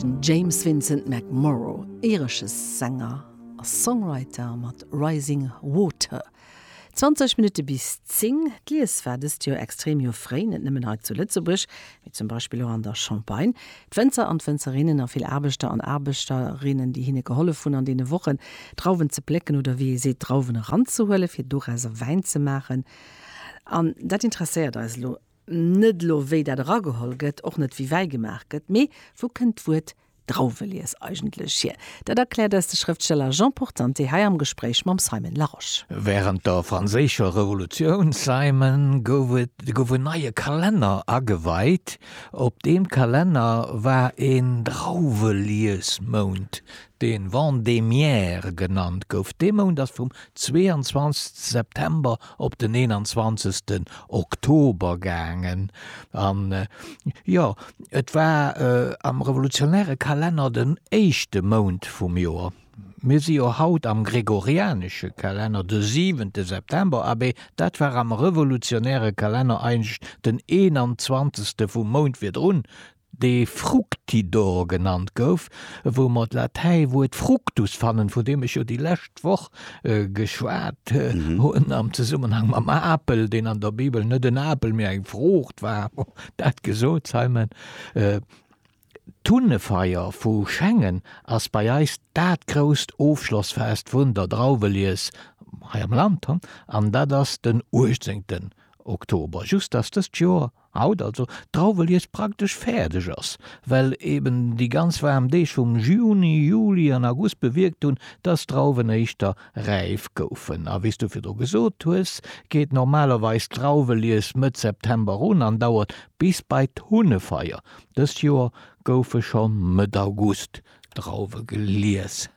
Den James Vincent McMorrow, iresche Sänger a Songwriter mat Rising Water. 20 Minutte bis 10, D'Lies war dëst Joer extrem, jo fréi, net nëmmen hei zu Lëtzebuerg, mee zum Beispill och an der Champagne. D'Wënzer an d'Wënzerinnen a vill Aarbechter an Aarbechterinnen, déi hinne gehollef hunn an deene Wochen, Drauwen ze plécken oder wéi ee seet, Drauwen eranzehuelen, fir dorausser Wäin ze maachen. An dat interesséiert eis elo. Net elo wéi dat erageholl gëtt, och net wéi Wäi gemaach gëtt, mee wou kënnt d'Wuert Drauwelies eigentlech hier? Dat erkläert eis de Schrëftsteller Jean Portante hei am Gespréich mam Simon Larosche. Wärend der Franséischer Revolutioun, Simon, gouf en neie Kalenner ageweit. Op deem Kalenner war een Drauweliesmount, dee Vendémiaire genannt gouf. Dee Mount ass vum 22 September op den 21 Oktober gaangen an jo et war am revolutionäre Kalenner den éischte Mount vum Joer. Mir si jo haut am gregorianesche Kalenner, de siwente September, abee dat war am revolutionäre Kalenner eigentlech den 21 vum Mount virdrun, dee Fructidor genannt gouf, wou mer d'Latäiwuert fructus fannen, vun deem ech jo déi lescht Woch geschwat hunn am Zesummenhang mam Apel, deen an der Bibel net en Apel, mee eng Fruucht war. Bon, dat gesot, Simon, d'Hunnefeier vu Schengen ass bei eis dat grousst Ofschlossfest vun der Drauwelies hei am Land, an dat ass den 18 Oktober, just dass dëst Joer Haut also d'Drauwelies praktesch fäerdeg ass, well eben déi ganz waarm Deeg vum Juni, Juli an August bewierkt hunn, dass d'Drauwen éischter räif goufen. A wéi s du virdru gesot hues, geet normalerweis d'Drauwelies Mëtt September un an dauert bis bei d'Hunnefeier. Dëst Joer goufe scho Mëtt August d'Drauwe gelies.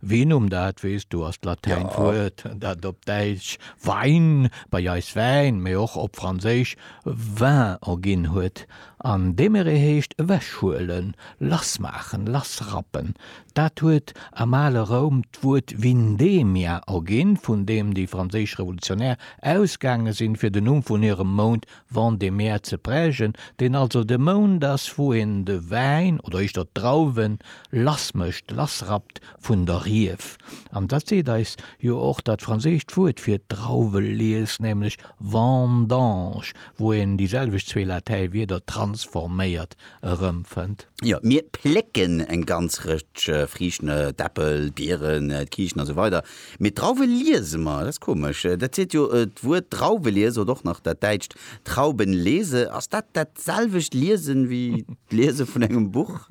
Vinum, dat weess du, ass d'latäint Wuert, dat op Däitsch Wein, bei eis Wäin, mee och op Franséisch vin erginn huet. An demere heescht ewechhuelen, lassmaachen, lassrappen. Dat huet am ale Roum d'Wuert vindemia erginn, vun deem déi franséisch Revolutionär ausgaange sinn, fir den Numm vun hirem Mount Vent de mer ze prägen, deen also de Mount ass, wou een de Wäin, oder éischter d'Drauwen, lass mécht, lass rappt vun der Rief. An dat seet eis jo och dat franséischt Wuert fir d'Drauwelies, nämlech vendange, wou een déi selwecht zwee Latäiwierder transforméiert erëmfënnt. Jo, mir plécken eng ganz Rëtsch Friichten, d'Äppel, d'Bieren, d'Kiichen, a sou weider Mee d'Drauwe liese mer, dat ass komesch, dat seet jo d'Wuert Drauwe liese oder och nach dat däitscht Trauben lese. Ass dat dat selwecht Liesen wéi d'Liese vun engem Buch?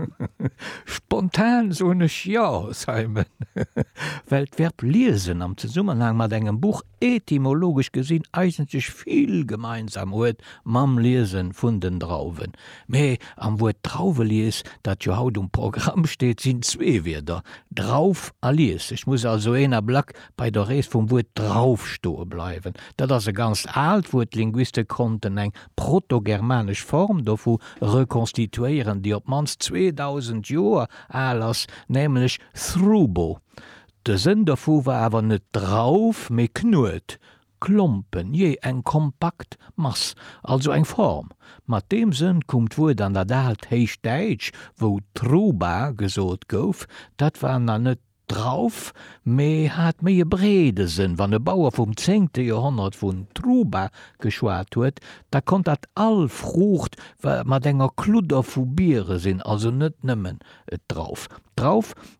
Spontan soen ech jo, Simon, well d'Verb liesen am Zesummenhang mat engem Buch etymologesch gesinn eigentlech vill gemeinsam huet mam Liese vun den Drauwen. Mä am Wuert Drauwelies, dat jo haut um Programm steet, sinn zwee Wierder, Drauf a Lies. Et muss also een à black bei der Rees vum Wuert Drauf stoe bleiwen. Dat ass e ganzt aalt Wuert, d'Linguiste konnten eng protogermanesch Form dovu rekonstituéieren, déi op d'mannst 2000 Joer al ass, nämlech thrubo. De Sënn dovu war awer net Drauf, mee Knuet, Klompen, jee, eng kompakt Mass, also eng Form. Mat deem Sënn koum d'Wuert an dat aalt Héichdäitsch, wou Truba gesot gouf. Dat war nach net Drauf, mee hat méi e breede Sënn. Wann e Bauer vum zéngte Joerhonnert vun Truba geschwat huet, da konnt dat all Fruucht mat enger Kludder vu Biere sinn, also net nëmmen d'Drauf. D'Drauf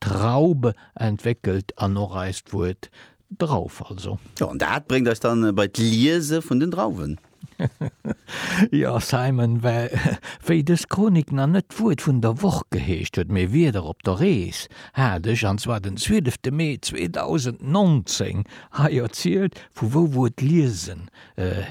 Traub entwéckelt an och eist Wuert Drauf also. Jo, an dat bréngt eis dann bei d'Liese vun den Drauwen. Jo, Simon, well wéi dës Chronik nach net d'Wuert vun der Woch geheescht huet, mee Wierder op der Rees, hat ech, an zwar den 12 de Mee 2019, hei erzielt, vu wou d'Wuert liesen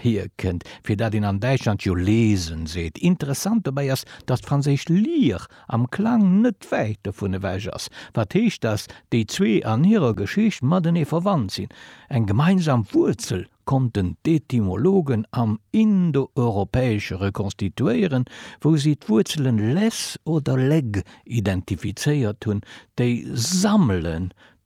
hierkënnt, fir dat een an Däitschland jo lesen seet. Interessant dobäi ass, datt d'franséisch lire am Klang net wäit dovun ewech ass, wat heescht, datt déi zwee an hirer Geschicht matenee verwannt sinn. Eng gemeinsam Wuerzel konnten d'Etymologen am Indoeuropäesche rekonstituéieren, wou si d'Wuerzele les oder leg identifizéiert hunn, déi sammelen,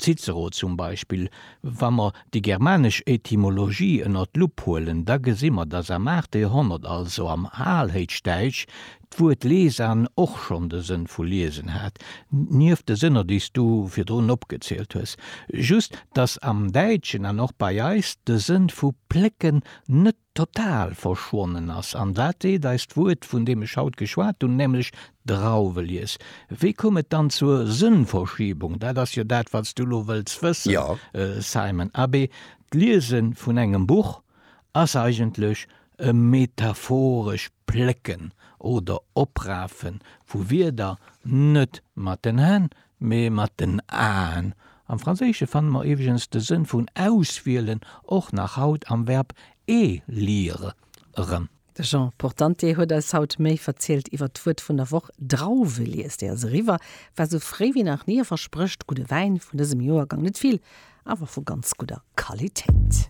Cicero zum Beispill. Wa mer déi germanesch Etymologie ënner d'Lupp huelen, da gesi mer, datt am aachte Joerhonnert, also am Alhéichdäitsch, d'Wuert lesan och schonn de Sënn vu liesen hat, nieft de Sënner, déi s du virdrun opgezielt hues. Just, datt am Däitschen an och bei eis de Sënn vu plécken net total verschwonnen ass. An wat seet eis d'Wuert, vun deem ech haut geschwat hunn, nämlech Drauwelies? Wéi koum et dann zur Sënnverschiebung? Dat ass jo dat, wat s du elo wëlls wëssen, Simon. Abee, d'Liese vun engem Buch ass eigentlech e metaphorescht Plécken oder Oprafe vu Wierder, net mat den Hänn, Mee mat den Aen. Am Franséische fanne mer iwweregens de Sënn vun auswielen och nach haut am Verb élire erëm. De Jean Portante huet eis haut méi verzielt iwwert d'Wuert vun der Woch, Drauwe. Liest déi also eriwwer, war esou fréi wéi nach ni a versprécht gudde Wäin vun dësem Joergang. Net vill, awer vu ganz gudder Qualitéit.